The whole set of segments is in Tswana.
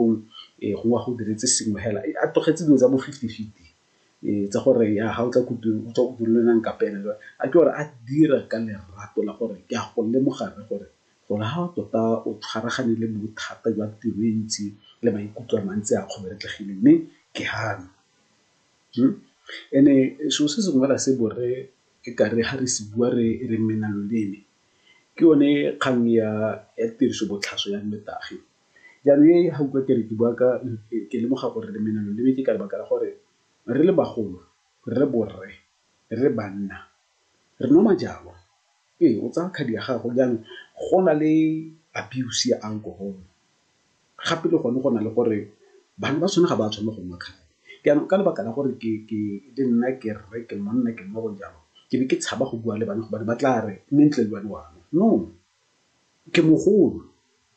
Gong ee gongwe a go diretse sengwe fela a tlogetse dilo tsa bo fifty fifty tsa gore ya ga o tla ko tirong o tswa ko tirong le ena a nkapele jwale a ke gore a dira ka lerato la gore ke a go lemoga rre gore gore ha tota o tshwaragane le bothata jwa tiro e ntsi le maikutlo a mantsi a kgoberetlogile mme ke gana. And-e selo se sengwe fela se borre e ka re ga re se bua re re mena loleme ke yone kgang ya tiriso botlhaswa ya nnotagi. Jaanong e ga utlwa ke re ke bua ka, ke lemoga gore re mena loleme ke ka lebaka la gore re le bagolo, re le borre, re le banna re nwa majalo. Ee, o tsaya khadi ya gago jaanong go na le abuse ya alcohol gape le gone go na le gore bana ba sone ga ba tshwanela go nwa khadi. Jaanong ka lebaka la gore le nna ke rre, ke monna, ke mmago jalo ke be ke tshaba go bua le bana gobane ba tla re mme ntle le wena wa nwa, no. Ke mogolo,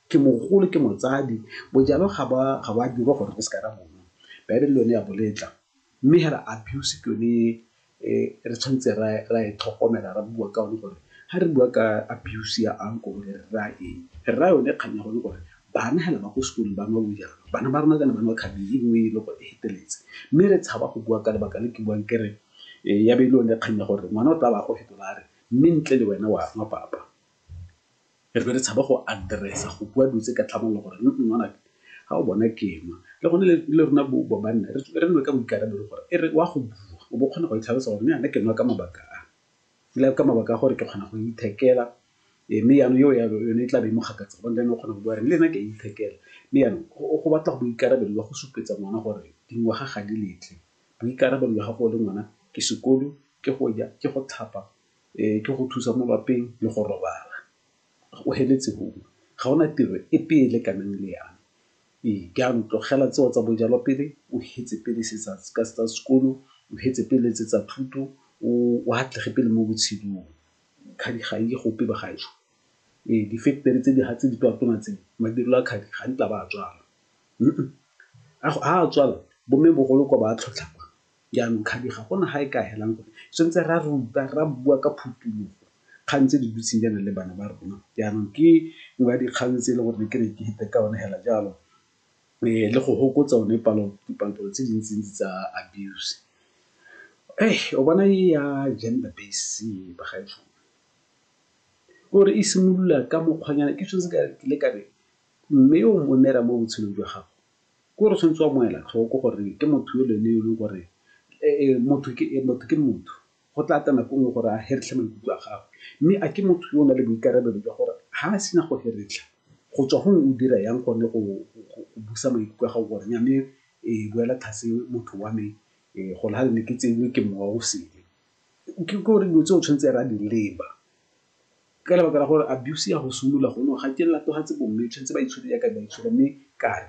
ke mogolo, ke motsadi. Bojalwa ga bo a, ga bo a dirwa gore re seka ra bo nwa. Baebele le yone ya bo letla. Mme hela abuse ke yone e re tshwanetse ra, ra e tlhokomela, ra bua ka yone gore ha re bua ka abuse ya alcohol re raya eng. Re raya yone kgang ya gone gore bana hela ba ko sekolong ba nwa bojalwa, bana ba rona kana ba nwa khabile e nngwe e leng gore e feteletse. Mme re tshaba go bua ka lebaka le ke buang ke re ya be e le yone kgang ya gore ngwana o tla ba a go fetola a re mme ntle le wena wa nwa papa. Re be re tshaba go address-a, go bua dilo tse ka tlhamalalo gore ngwanaka ga o bona ke nwa. Le gone le rona banna re nwe ka boikarabelo gore e re o a go bua o bo o kgona go itlhalosa gore mme yana ke nwa ka mabaka a, ebile ka mabaka a gore ke kgona go ithekela mme yanong eo ya yone e tla be e mo gakatsa gobane le ene o kgona go bua gore le nna ke a ithekela. Mme yanong go batla boikarabelo jwa go supetsa ngwana gore dingwaga ga di letle. Boikarabelo jwa gago o le ngwana ke sekolo, ke go ja, ke go tlhapa, ke go thusa mo lapeng le go robala. O feletse foo, ga go na tiro epe e e lekanang le ya me. Ee, jaanong tlogela tseo tsa bojalwa pele, o fetse pele se tsa sekolo, o fetse pele tse tsa thuto, o atlege pele mo botshelong. Kgadi ga e ye gope bagaetsho. Ee, difeketere tse di tona tse, madirelo a kgadi ga nkitla ba a tswala. Ga a tswala bo mme bogolo kwa ba a tlhotlhama, jaanong kgabi ga gona ga e ka helang gore tshwanetse ra ruta, ra bua ka phutulogo kgang tse di dutseng jaana le bana ba rona. Jaanong ke nngwe ya dikgang tse e leng gore ke ne ke fete ka yone fela jalo le go fokotsa one dipalo-palo tse dintsi ntsi tsa abuse. O bona e ya gender based bagaetsho e simolola ka mokgwanyana ke sone se ke ileng ka re. Mme yo o mo neelang mo botshelong jwa gago, ke gore o tshwanetse wa mo ela tlhoko gore ke motho yo le ene yo e leng gore motho ke motho ke motho. Go tla tla nako nngwe gore a heretlhe maikutlo a gago, mme a ke motho yo o nang le boikarabelo jwa gore ha a sena go heretlha go tswa gongwe o dira yang gone go busa maikutlo a gago gore nya mme boela tlase motho wa me gore ha le ne ke tseilwe ke mowa o sele. Ke gore dilo tse o tshwanetse re a di leba. Ka lebaka la gore abuse ya go simolola gone ga ke latofatse bomme tshwanetse ba itshwere jaaka ba itshwere mme kare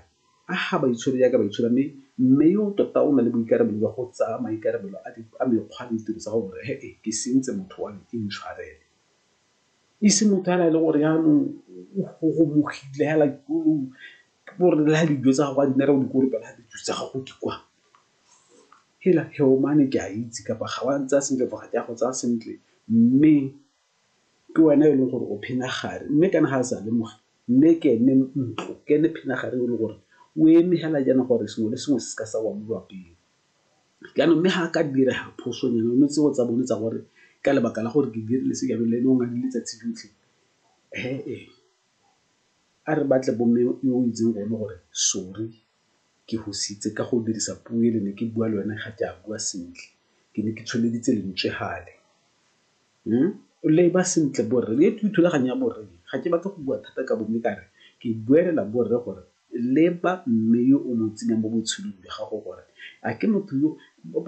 a ga ba itshwere jaaka ba itshwere mme mme yo tota o na le boikarabelo jwa go tsaya maikarabelo a mekgwa le ditiro tsa go gore he e ke sentse motho wa me ke ntshwarele. E se motho fela e le gore yanong o gogomogile fela o re le ga dijo tsa gago a di ne re o di kolobela ga dijo tsa gago di kwa hela Heomane ke a itse kapa ga wa ntsaya sentle kapa ga ke a go tsaya sentle mme ke wena e leng gore o phena gare mme kana ga a sa lemoge mme ke ene ntlo ke ene phena gare e le gore o eme hela jaana gore sengwe le sengwe se se ka sa wa mo lwapeng jaanong mme ga a ka dira phoso nyana one tseo tsa bone tsa gore ka lebaka la gore ke dirile se jaanong le ene o ngadi letsatsi lotlhe he-e a re batle bomme yo o itseng gone gore sorry. Ke go sitse ka go dirisa puo e le ne ke bua le wena ga ke a bua sentle. Ke ne ke tsholeditse lentswe fale. O leba sentle borre, e ke thulaganyo ya borre e. Ga ke batle go bua thata ka bo mme ka re ke buelela borre gore leba mme yo o mo tsenyang mo botshelong jwa gago gore a ke motho yo,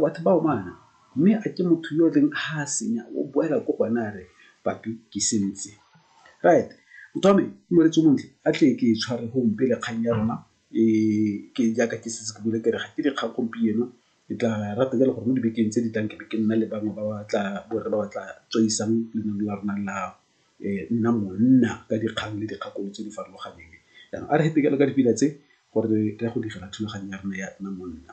batho ba omana mme a ke motho yo e reng ha a senya o boela ko go ene a re papi ke sentse. Right, motho wa me, ke molwetsi o montle, a tle ke tshware gompe le kgang ya rona Ke jaaka ke setse ke buile ke re ga ke dikgang gompieno, ke tla rata jalo gore mo dibekeng tse di tlang ke be ke nna le bangwe ba ba tla, bo rre ba ba tla tsweisang lenaneo la rona la Nna Monna ka dikgang le dikgakololo tse di farologaneng. Jaanong a re fete jalo ka dipina tse gore re ya go direla thulaganyo ya rona ya Nna Monna.